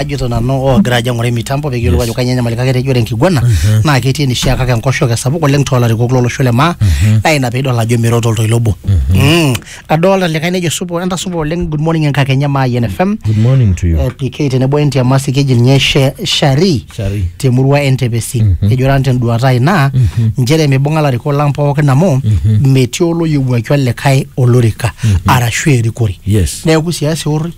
ajito nanu oogira ajo aing'uraa mitambo pee kiyiolou ajo kainyoo enyamali kake tejo ore enkiguana naa ketii enishaa kake enkoshoke sapuk oleng toolarikok lolosho le maa naa ina piidol ajo meiro toltoilo obo. Mm. Adolta likae nejo supa entasupa oleng good morning enkakenya maa Yen FM. Good morning to you. Eh, PK tenebo o Entiamasi keji ninye She- Shari Shari. temurua entepesi ejo ran tenduata ai naa nchere mibung'a larikok lang pookin amu metii oloyiewuaki olikae olorika arashu erikore Yes. neeku siasa eorri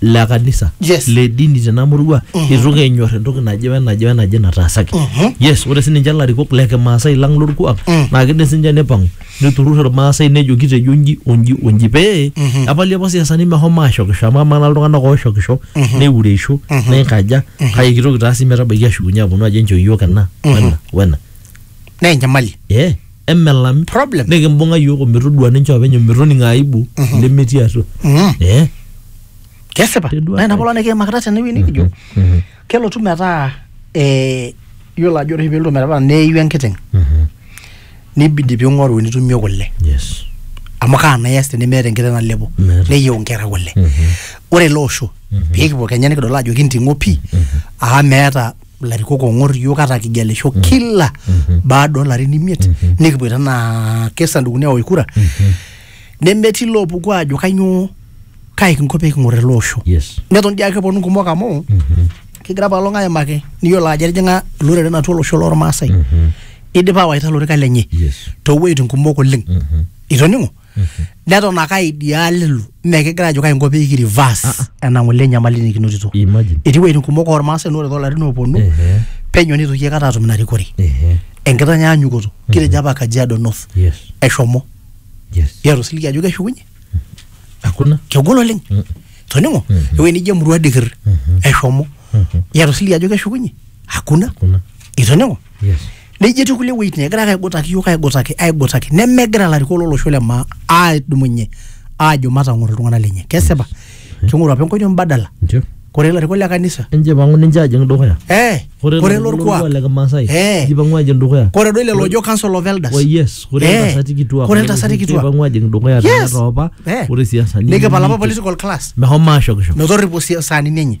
le kanisa Yes. le dini tena murua itu kenyor entoki naje wenaje wenaje nataasaki Mhm. yes ore sininche ilarikok le kimaasai lang lorkuak Mm. naa kidim sininche nipang'u niturrur irmaasai nejo kitejo nji onji onji pee Mhm. epali apa siasani mehomo ashokisho amu amaa naa iltung'anak ooshokisho Mhm. neureisho Mhm. neikaja kake kitoki taa sii metabaiki ashukunye aponu ajo enchoo iyiook ena Mhm. wena wena naa enyamali eh emelami Problem. nikimbung'a yiok ometodua ninche openy ometoning aibu lemetii atua Mm. Eh, kesipa Kedua naa ina ai. polo nikiimakita tenewueji nikijo mhm, kelotu metaa eh, yiolo ajo ore oshi pelotu metaa neiu enkiteng mhm. nibidi ping'oru enitumie kule yes amu kaa naa ias tenimiata enkiteng nalepo Meeta. neyieu nkera kule Mhm. ore ele osho pekipuo kenya nikidol ajo kinting'o pii aa meeta ilarikok oong'or iyiook ata kigelisho kila baada oolarin imiet nikipuoita anaa kesandukuni aosh kura nemetii loopuku aajo kainyoo kai kinko pee king'or ele osho yes neton dii ake eponu kumok amu kigira apa olong aimaki niyiolo ajo etijing'a iloreren atua olosho lormaasai idipa awaita ilorikan lenye yes toowueitin kumok oleng itoning'o neton ake aidial ilo mme kigira ajo kainko pee ki reverse ena ng'ole enyamali nikinotito imagine etii wueitin kumok ormaasai naa ore toolarin ooponu Ehe. penyo nitoki aikata atum ina rikore Ehe. enkitanyanyukoto kitejo apa kajiado north yes eshomo yes yetu siligi ajo keshukunye hakuna kegol oleng Mm. toning'o ewuei nijo emurua dikir eshomo yetu siligi ajo keshukunye hakuna kuna itoning'o yes nejo etii kulie wuejitin egira ake aigutaki iyiook aigutaki aigutaki nemegira ilarikok lolosho le maa adumunye aajo matang'oro iltung'anak lenye kesipa king'oru apa enkoitoi mbadala Nche. kore ilarikok le kanisa enjipang'u ninche ajing dukuya eh kore kore lelo lorkuak le kimaasai Eh. njipang'u ajing dukuya kore doi lelo ojo council of elders Wa yes, kore Eh, iltasati kituak kore iltasati kituak. njipang'u ajing dukuya Yes. tena toopa Eh. ore siasani nikipal apa political class mehomo ashokisho metorripo si- saanini enye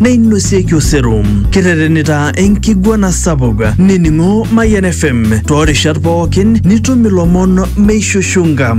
neinosieki osero kiterenita enkiguana sapuk nining'o Mayian FM toorishat pookin nitum ilomon meishushunga.